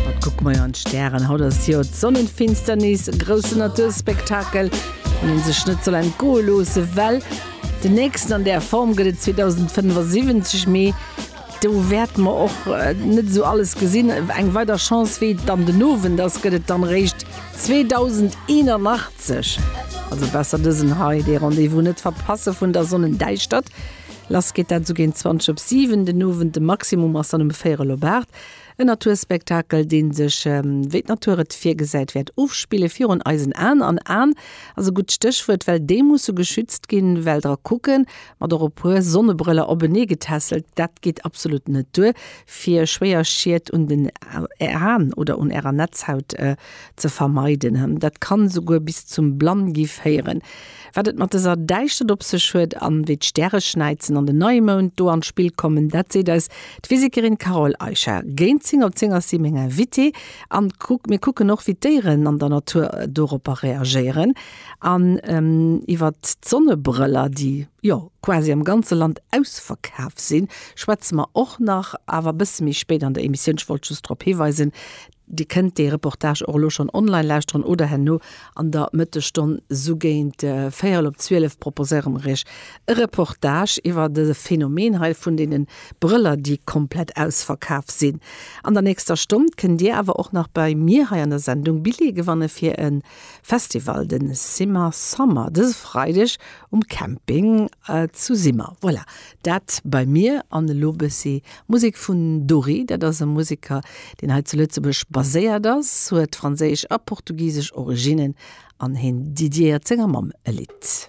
Wat kucke mer jo an d'Stären? Haut ass jo d'Sonnenfinsternis, e groussen Naturspektakel, deen een sech net soll entgoe loosse well. Den nächsten an där Form gëtt et 2075, mee do wäerte mer och net esou alles gesinn. Eng weider Chance, wéi et dann den Owend ass, gëtt et dann eréischt 2081. Also besser dësen hei, dee Rendez-vous net verpasse vun der Sonnendäischtert. Lass geet dat esou géint 20 op 7 den Owend, de Maximum ass dann ëm 4 op 8. En Naturspektakel, dee sech, wéi d'Natur et virgesäit, wäert ofspille virun eisen Aen. An Aen ass e gutt Stéchwuert, well déi musse geschützt ginn, well dra kucken, mat och e puer Sonnebrëller openee getässelt, dat geet absolut net duer, fir schwéier Schied un den Aen oder un Ärer Netzhaut ze vermeiden. Dat kann esouguer bis zum Blann-gi féieren. Wat et mat dëser Däischtert op sech huet an wéi d'Stäreschnäizen an den Neimound do an d'Spill kommen, dat seet eis d'Physikerin Carole Eicher. Géint 10 op 10 ass si meng Invitée an mir kucken och, wéi d'Déieren an der Natur doropper reagéieren an iwwert d'Sonnebrëller, déi jo quasi am ganze Land ausverkaf sinn, schwätze mer och nach, awer e bësse méi spéit an der Emissioun. Ech wollt just drop hiweisen, Dir kënnt dee Reportage och elo schonn online lauschteren oder herno an der Mëttesstonn sou géint véierel op zwielef proposéiere mer iech e Reportage iwwer de Phänomen hei vun deene Brëller, déi komplett ausverkaf sinn. An der nächster Stonn kënnt dir awer och nach bei mir hei an der Sendung Billjeeë gewanne fir e Festival, de Simmer Summer, dëse Freideg um Camping zu Simmer. Voilà, Dat bei mir an elo bëssi Musek vun Dori. Dat ass e Museker, deen hei zu Lëtzebuerg baséiert ass, huet franséisch a portugisesch Originnen an hien dediéiert senger Mamm e Lidd.